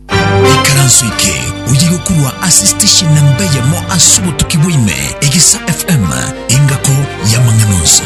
Ikaranso eke oye gokurwa ase station na mbe yamo ase obotuki bwaime Egesa FM engako y'amang'ana onsi.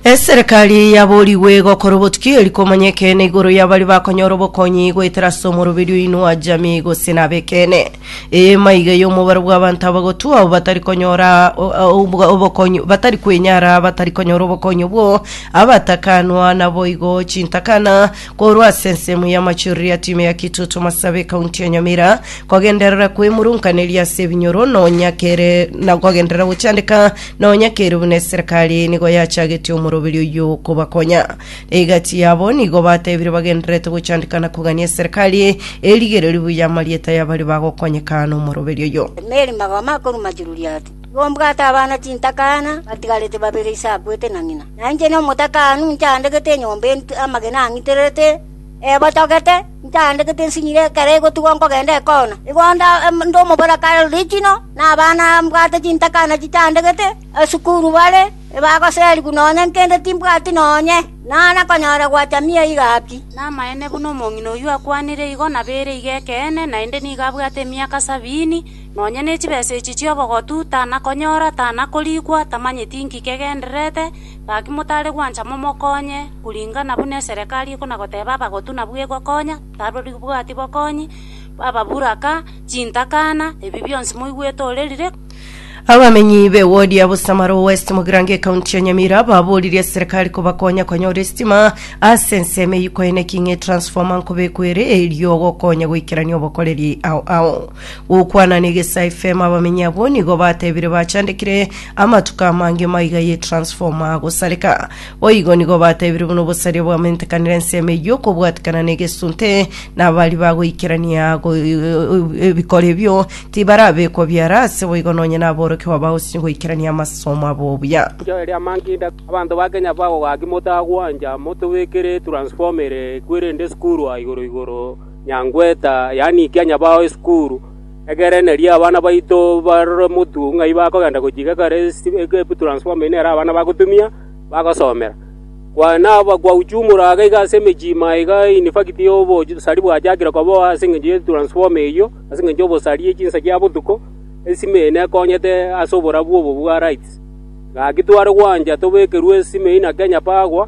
Eserekari yaborigwe gokora obotuki eri komanya ekeene igoro y'abari bakonyora obokonyi goetera ase omoroberio oinwa jamii gose na abekene eye maiga y'omobaro bw'abanto abagotwa abo batari konyora o- o- obo- obokonyi batari kwenyara batari konyora obokonyi obwo abatakanwa naboigo chintakana Korwa ase ensemo y'amachorero ya timu ya Kitutu Masabe kaunti ya Nyamira kogenderera kwemurunkaneria ase ebinyoro nonya kere na kogenderera gochandeka nonya kere buna eserikali nigo yachagetie omoroberi oyio kobakonya egati yabo nigo batebire bagendererete gochandeka na kogania eserikali erigereri buya amarieta y'abari bagokonyeka nomoroberi oyio. Mary Magoma akoruma Juliet Tigombwata abana chintakana batigarete babere ise akwete na ng'ina, na inche nomotakanu nchandegete enyomba entwe amagena ang'itererete, ebotogete, nchandegete nsinyire ekero egotugwa nkogenda ekona. Igo onde onde omobora kare richino, na abana mbwate chintakana chichandegete, esukuru bare, ebagoserigwa nonya nkende timbwati nonye, naana konyora gwacha mia iga pi. Namaene buna omong'ina oyio akwanire igo, nabere iga ekeene, naende nigo abwate emiaka sabini. Nonya ne chibesa echi chi'obogotu, tanakonyora, tanakorikwa, tamanyeti inki kegendererete, gaki motare gwancha momokonye, kuringana buna eserekari ekonagoteba abagotu nabwo egokonya, tarori bwati bokonyi, ababuraka, chintakana, ebi bionsi moigwete orerire. Abamenyi be wodi ya Busamaro West Mugirango ekaunti ya Nyamira baboririe eserekari kobakonya konyora esitima ase ensemo eyio kwaeneki ng'a etransformer nkobekwe ere erio gokonya goikerania obokoreri ao ao. Gokwana negesa FM abamenyi abwo nigo batebire bachandekire amatuko amange maiga ye transformer agosareka. Boigo nigo batebire buna obosaria bwamentekanire ensemo eyio okobwatikana negesunte na abari bagoikerania go- ebikoro ebio tibarabekwa biara ase boigo nonye naborokigwa bagosinywa goikerania amasomo abo obuya. Enchera eria mankinda, abanto ba Kenya bagogaaki motagwancha motobekere transformer eye ekwerende esukurwa igoro igoro. Nyangweta, yaani ikianya bao esukuru, egerenerie abana baito barore motuo ng'ai bakogenda gochia igekara egepu transformer eyi nere abana bagotumia bagosomera. Kwana kwauchumora iga iga ase emechie ime aiga in fact obosari bwachakire kobao ase engencho ye transformer eyio, ase engencho y'obosari ye chinsa chia botuko, esime eye nekonyete ase oborabu obo bwa rights. Gaki tware gwancha tobekerwe esime eyi na Kenya power.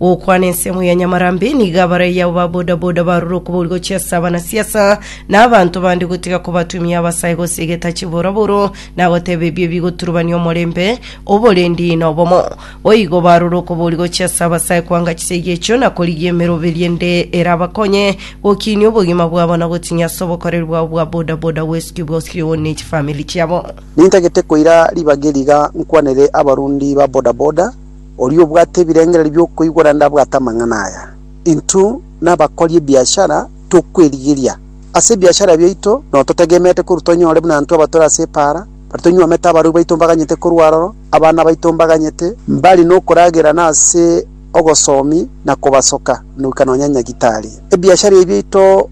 Gokwana ensemo ya Nyamarambe nigo abaraiyo abo ba bodaboda barure okobori gochia ase abanasiasa na abanto bande gotiga kobatumia abasae gose egeta chiboroboro na goteba ebio bigoturubania omorembe, oborendi na obomo. Boigo barure okobori gochia ase abasae kwanga chisegi echio na korigia emeroberi ende erabakonye gokiinia obogima bwabo na gotinya ase obokoreri bwabo bwa bodaboda gwesiki bosiri one ne chifamiri chiabo. Nintagete koira ribaga eri iga nkwanere abarundi ba bodaboda Oria obwate ebirengererio bi'okoigwa naende abwate amang'ana aya. Intwe nabakori ebiashara tokwerigeria. Ase ebiashara biaito nao totegemeete korwa tonyore buna intwe abatore ase epaara, baria tonywomete abarui baito mbaganyete korwa aroro, abana baito mbaganyete, mbare nokoragerana ase ogosomi na kobasoka, na goika nonya nyagitari. Ebiashara ebi biaito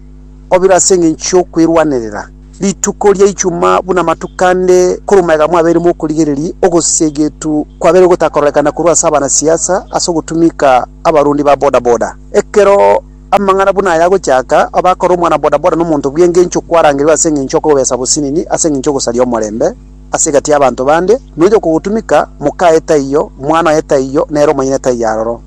obiro ase engencho y'okwerwanerera. Rituko ria Ijumaa buna amatuko ande korwa omoegamo mwabeire mokorigereria ogosegetu kwabeire gotakororekana korwa ase abanasiasa ase ogotumika abarundi ba bodaboda. Ekero amang'ana buna aya agochaka, abakore omwana bodaboda nomonto bw'engencho kwarangerigwe ase engencho y'okobesa bosinini, ase engencho y'ogosaria omorembe ase egati y'abanto bande, nonya okogotumika, moka aye taiyo, mwana oye taiyo, nere omonyene taiyo aroro.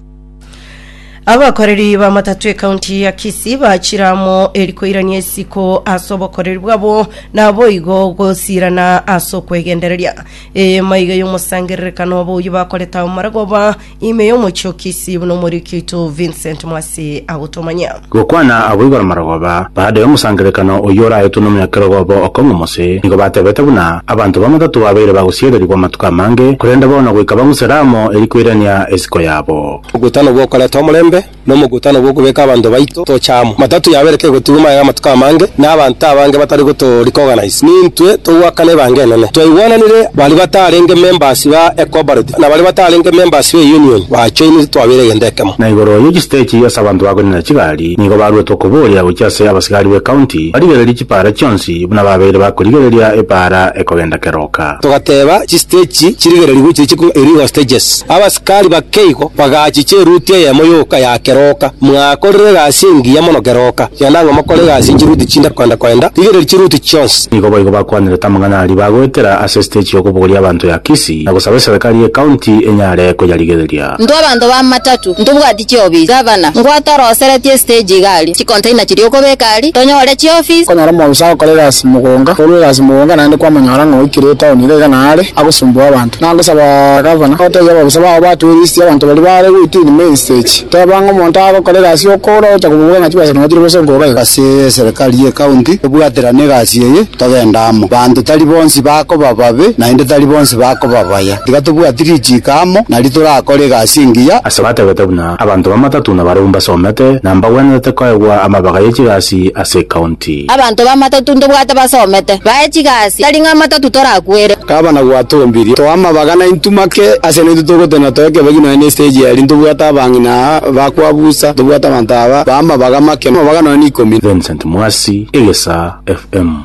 Abakoreri b'amatato ekaunti ya Kisii bachire amo eri koirania isiko ase obokoreri bwabo naboigo gosirana ase okwegendereria eema iga y'omosangererekano obo oyio bakorete ao maragoba ime y'omochie o Kisii buna omoriki oito Vincent Mwasi agotomanyia. Gokwana abwo igoro marogoba, baada y'omosangererekano oyio oraetwe nomonyakerogo obo okong'u omose, nigo batebete buna abanto bamatato babeire bagosiererigwa amatuko amange, korende bono goika bang'usere amo erio koirania esiko yabo. Omogutano bw'okoreta omorembe nomogutano bw'okobeka abanto baito tocha amo. Matatu yabere kegotigwa maega amatuko amange, na abanto abange batari gotoria koorganiza. Nintwe togoakana ebanga enene. Twaigwananire baria batarenge members ba ecooperative na baria batarenge members be union bajoinire twabeire egento ekemo. Na igoro ye chistage ase abanto bakonina chigari nigo baruete okoboria gochia ase abasigari be county barigererie chipaara chionsi buna babeire bakorigereria epaara ekogenda keroka. Togateba chistage chirigererigwe chiri chikong'u erio igo stages. Tari bake igo, bagachicha eruti eyemo yoka ya keroka. Mwakorire egasi engiya mono keroka. Iga nang'o mokore egasi ye chiruti chinde koenda koenda, rigereria chiruti chionsi. Nigo boigo bakwanirete amang'ana aria bagoetera ase esiteji y'okobogoria abanto ya Kisii, na gosaba eserekari y'ecounty enyare koyarigereria. Intwe abanto b'amatatu ntobwati chiofisi, gavana, ngwate oroseretie esiteji iga aria, chicontainer chiria okobeka aria, tonyore chiofisi. Konyora omwofisa agokora egasi mogonga, korwa egasi mogonga naende kwamonyora ng'a oikire etown iga iga naare agosumbuwa abanto. Nagosaba gavana, otebie ababisa bao batwee listi y'abanto baria baare goitinia mainstage. Teba ng'a omonto agokorera egasi y'okoura ogocha komoboga ng'a chibesa nonya chire gose nkoga iga. Ase eserekari y'ekaunti tobwaterane egasi eye, togende amo. Banto tari bonsi bakoba babe, naende tari bonsi bakoba baya. Tiga tobwati richiiko amo, nario torakore egasi engiya. Ase batebete buna abanto bamatatu na barabwo mbasomete na mbagwenerete koegwa amabega ye chigasi ase ekaunti. Timoti. Abanto b'amatatu ntobwate basomete, bae chigasi, tari ng'a amatatu torakwere. Kaba na gwatombirie, toa amabaga na intu make, ase naintwe togotena toe kebegi nonya ne stage eria, ntobwate abang'ina aa bakwa busa, ntobwate abanto aba bae amabaga make, amabaga nonya ne ikomi na. Vincent Mwasi, Egesaa FM.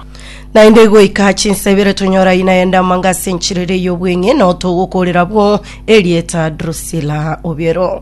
Naende goika chinsa ibere tonyora ina ende amanga ase enchiriri y'obweng'e, na otogokoorera abwo erieta Drusilla Obiero.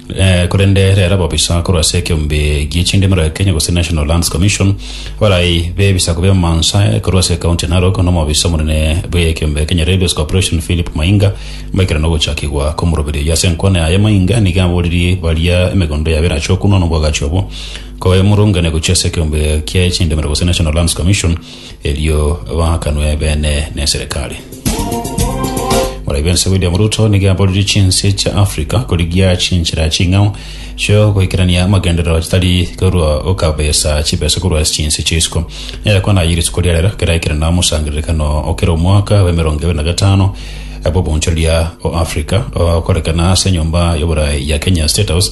Eh, korende rero ababisa korwa ase ekeombe gie chindimero ya Kenya gose National Lands Commission barai bebisaku b'emansa eh, korwa ase ekaunti ya Narok n'omobisa omonene bw'ekeombe Kenya Railways Corporation Philip Mainga baikera nogochakigwa komoroberi oyo ase enkwana yaye Mainga nigo aboririe baria emegondo yabo erache okunwa n'obwagachi obwo koemurungane gochia ase ekeombe gie chindimero gose National Lands Commission erio baakanwe ebeene neserekari. Borai bense William Ruto nigo aboririe chinse chia Africa korigia chinchera ching'ao chio goikerania amagenderero chitari korwa gokabesa chibesa korwa ase chinse chia isiko. Nere kwana aye rituko ria rero keraikerana omosangererekano okera omwaka bwa emerongo ebere na gatano bw'obonchoreria o Africa okorekana ase enyomba y'oborai ya Kenya State House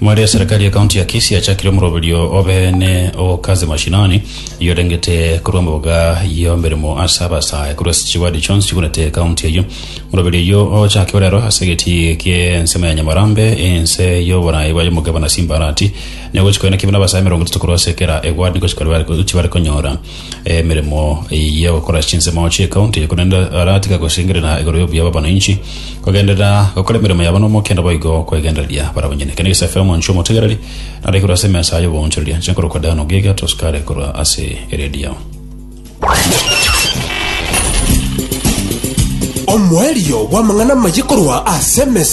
Mwaria serikali ya kaunti ya Kisii achakire omoroberio obeene o Kazi Mashinani, oyorengete korwa emboga y'emeremo ase abasae korwa ase chiwadi chionsi chigunete ekaunti eyio. Omoroberio oyio ochakiwe rero ase egetii ki'ensemo ya Nyamarambe, ense y'oborai bwa Yomogeba na Simbarati. Nigo gochikoina kibe nabasae emerongo etato korwa ase kera ewadi gochia kore chibare konyora. emeremo ya gokora chinsemo chi'ekaunti korende aratiga gosengerera igoro y'obuya bw'abananchi kogenderera gokora emeremo yabo n'omokendo boigo kwegendereria barabwo nyene kende gese FM nchi omotegereri nare korwa ase emesa y'oboonchoreria chinkoro kwa Diana Ogiga tosukare korwa ase eredio Omoerio bw'amang'ana amaye korwa ase emesa